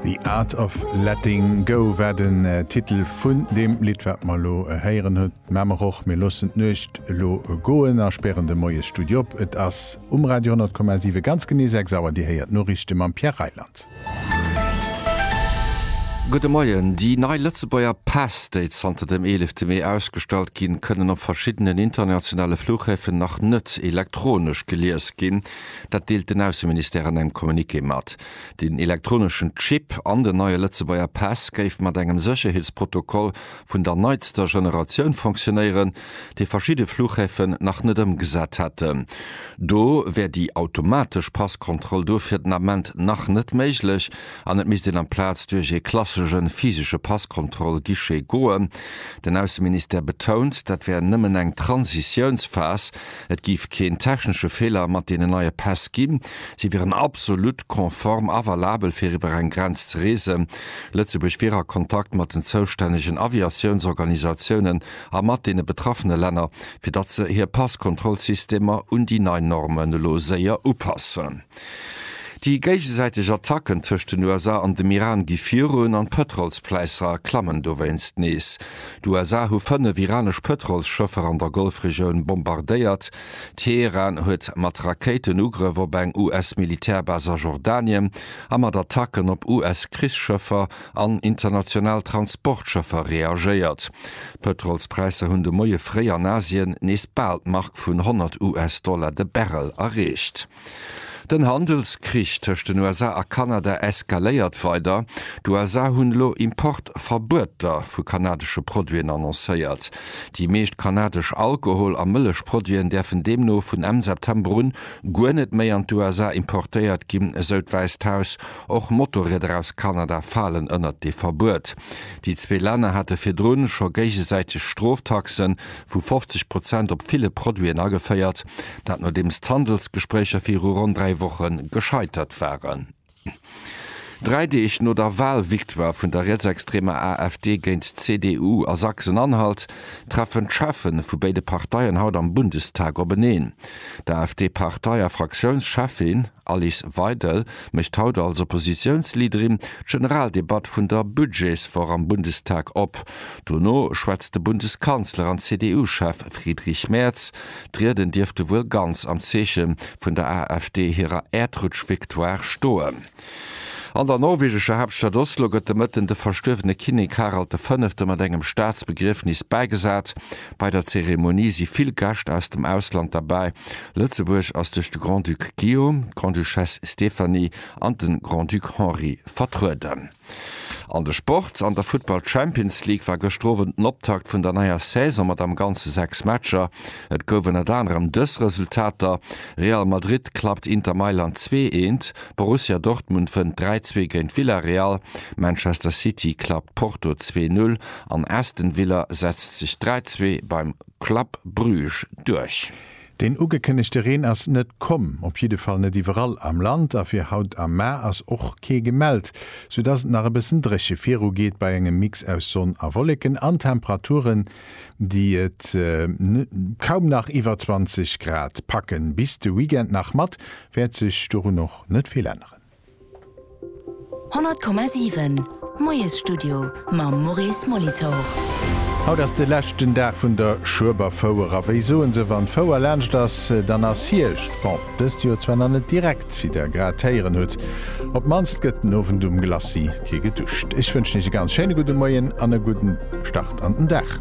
The Art of Letting Go war den Titel vun deem Lidd, wat mer elo héieren. Hutt d'Memech och. Mir loossen d'Nuecht elo goen a spären de Moiesstudio op. Et ass um Radio 100,7 ganz genee 6 Auer. Dir héiert d'Noriichte mam Pierre Reyland. Gudde Moien. Déi nei Lëtzebuerger Päss, déi zanter dem 11 Mee ausgestallt ginn, kënnen op verschiddenen internationale Flughäfen nach net elektronesch gelies ginn. Dat deelt den Ausseministère an engem Communiqué mat. Den elektroneschen Chip an den neie Lëtzebuerger Pass géif mat engem Sécherheetsprotokoll vun der neitster Generatioun fonctionéieren, dee verschidde Fluchhäfen nach net ëmgesat hätten. Do wär déi automatesch Passkontroll dofir den Ament nach net méiglech an et misst een amplaz duerch ee klassesche physesche Passkontroll-Guichet goen. Den Ausseministère betount, dat wär nëmmen eng Transitiounsphas. Et géif keen technesche Feeler mat deenen neie Päss ginn. Si wieren absolut konform a valabel fir iwwer eng Grenz ze reesen. Lëtzebuerg wier a Kontakt mat den zoustännegen Aviatiounsorganisatiounen a mat deene betraffene Länner, fir datt se hir Passkontrollsystemer un déi nei Normen elo séier upassen. Déi géigesäiteg Attacken tëscht den USA an dem Iran gi virun an d'Pëtrolspläisser klammen dowéinst nees. D'USA hu fënnef iranesch Pëtrolsschëffer an der Golfregioun bombardéiert. Teheran huet mat Rakéiten Ugrëff op eng US-Militärbas a Jordanien a mat Attacken op US-Krichsschëffer an international Transportschëffer reagéiert. D'Pëtrolspräisser hunn de Moie fréi an Asien nees bal d'Mark vun 100 US-Dollar de Barrel erreecht. Den Handelskrich tëscht den USA a Kanada eskaléiert weider. D'USA hunn elo Importverbueter vu kanadesche Produiten annoncéiert. Déi meescht kanadesch Alkohol a Mëllechproduiten däerfen deemno vun Enn September un guer net méi an d'USA importéiert ginn, esou d'Wäisst Haus. Och Motorrieder aus Kanada falen ënnert dee Verbuet. Déi zwee Länner hate virdrun scho géigesäiteg Stroftaxe vu 50 Prozent op ville Produiten ageféiert. Dat nodeems d'Handelsgespréicher viru ronn dräi Woche gescheitert waren. Dräi Deeg no der Wahlvictoire vun der rietsextremer AfD géint d'CDU a Sachsen-Anhalt treffen d'Chefe vu béide Parteien haut am Bundestag openeen. D'AfD-Partei a Fraktiounscheffin Alice Weidel mécht haut als Oppositiounsleaderin d'Generaldebatt vun der Budgetswoch am Bundestag op. Dono schwätzt de Bundeskanzler an CDU-Chef Friedrich Merz D'Rieden dierfte wuel ganz am Zeeche vun der AfD hirer Äerdrutsch-Victoire stoen. An der norwegescher Haaptstad Oslo gëtt de Mëtten de verstuerwene Kinnek Harald de Fënnefte mat engem Staatsbegriefnis bäigesat. Bei der Zeremonie si vill Gäscht aus dem Ausland derbäi. Lëtzebuerg ass duerch de Grand-Duc Guillaume, d'Grande-Duchesse Stéphanie an de Grand-Duc Henri vertrueden. An de Sport, An der Futtball Champions League war gëschter Owend den Optakt vun der neier Saison mat am Ganze 6 Matcher. Et gouf ënnert anerem dës Resultater, Real Madrid klappt Inter Mailand 2 eent, Borussia Dortmund wënnt 3 zwee géint Villarreal, Manchester City klappt Porto 2 null an Aston Villa setzt sech 3 zwee beim Club Bruges duerch. Deen ugekënnegte Reen ass net komm, op jidde Fall net iwwerall am Land a fir haut am Mar ass och kee gemellt, sou dass et nach e bëssen dréche viru geet bei engem Mix aus Sonn a Wolleken an Temperaturen, déi et kaum nach iwwer 20 Grad packen. Bis de Weekend nach mat wäert sech dorun och net vill änneren. 100,7 Moiesstudio mam Maurice Molitor. Haut ass de leschten Dag vun der Schueberfouer a wéi soen se, wann d'Fouer laanscht ass, dann ass Hierscht. Bon, dëst Joer zwar nach net direkt, wéi der grad héieren hutt. Op d'mannst gëtt den Owend um Glacis kee geduscht. Ech wënschen iech e ganz schéine gudde Moien an e gudden Start an den Dag.